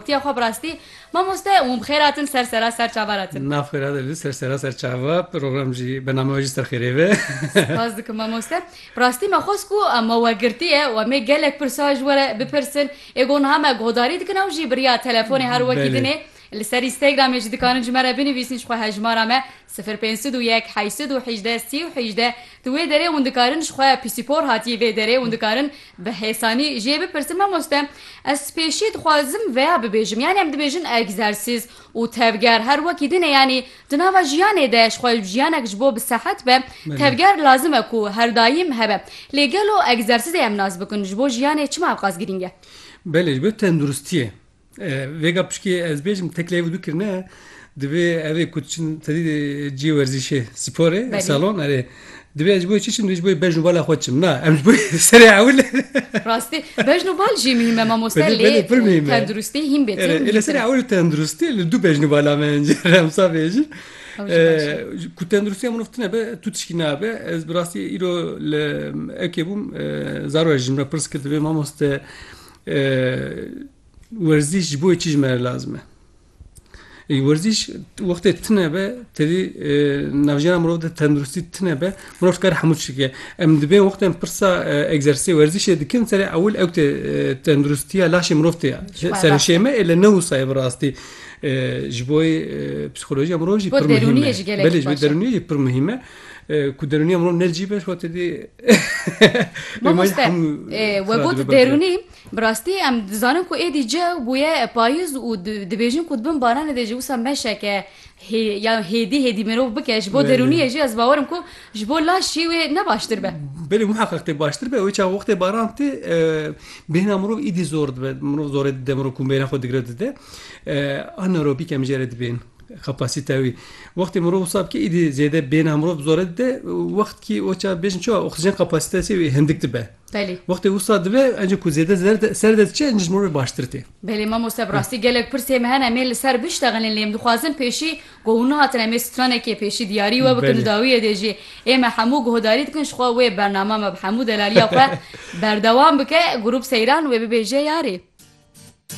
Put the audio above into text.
Ti ya xwe bi rastî mamoste ye û hûn bi xêr hatin ser sera ser çava re hatin. Na bi xêr hatin ser sera ser çava, program jî bername we jî ser xêrê be. Spas dikim mamoste. Bi rastî me xwest ku me we girtiye û em ê gelek pirsa ji we re bipirsin. Ê got niha me guhdarî dikin ew jî biriya telefonê her wekî din ê. Li ser Instagramê jî dikarin ji me re binivîsin ji xwe hejmara me Sifir pênc sed û yek heşt sed û hejdeh sî û hejdeh tu wê derê hûn dikarin ji xwe pîsîpor hatiyî vê derê hûn dikarin bi hêsanî jê bipirsin mamoste ez pêşî dixwazim veya bibêjim yanî em dibêjin egzersîz û tevger her wekî din e yanî di nava jiyanê de ji xwe jiyanek ji bo bi sehet be tevger lazim e ku her daîm hebe lê gelo egzersîzê em nas bikin ji bo jiyanê çima evqas girîng e? Belê ji bo tenduristiyê Vêga pişkî ez bêjim tekle ev dû kirine divê evê ku çin tedî cî werzîşê sporê salon erê Divê ji bo çi çim ji bo bejn û bala xwe çim na em ji bo serê ewil Rastî bejn û bal jî mihîme mamoste lê tenduristî hîn bê Li serê ewil û tenduristî li du bejn û bala me encî em sa bêjin ku tenduristî miriv tune be tu tişkî nabe ez bi rastî îro li ekê bûm zaro ji min re pirs kir divê mamoste Werzîş ji bo çi ji me re lazim e? Werzîş wextê tune be tevî navjena mirov de tenduristî tune be mirov dikare hemû tiştê em dibê wextên pirsa egzersizê werzîşê dikin serê ewil ew tê tenduristiya laşê mirov tê serşême ê li ne wisa bi rastî ji bo psîkolojiya mirov jî derûniyê jî pir muhîm e. ku derûniya mirov ne cî be ji watê dê Mamoste we got derûnî bi rastî em dizanin ku êdî cih bûye payiz û dibêjin ku dibin baranê dê jî wisa meşeke ya hêdî hêdî mirov bike ji bo derûniyê jî ez bawerim ku ji bo laş jî wê ne baştir be Belê muheqeq tê baştir be wê çawa wextê baran tê bêhna mirov êdî zor dibe mirov zorê dide mirov komberên xwe digre dide anaerobîk em jê re dibên. Kapasîteya wî. Wextê mirov wisa bike îdî zêde bêhna mirov bi zora dide wextkî o ça bêjin çawa oksîjen kapasîteya sê wê hindik dibe. Belê. Wextê wisa dibe encî ku zêde zer ser de diçe encî ji mirovê baştir tê. Belê mamoste bi rastî gelek pirsê me hene em ê li ser biştexilin lê em dixwazin pêşî ku hûn nehatin em ê stranekê pêşî diyarî we bikin û dawiyê dê jî ê me hemû guhdarî dikin ji xwe wê bernama me bi hemû delaliya xwe berdewam bike grûp seyran wê bibêje yarê.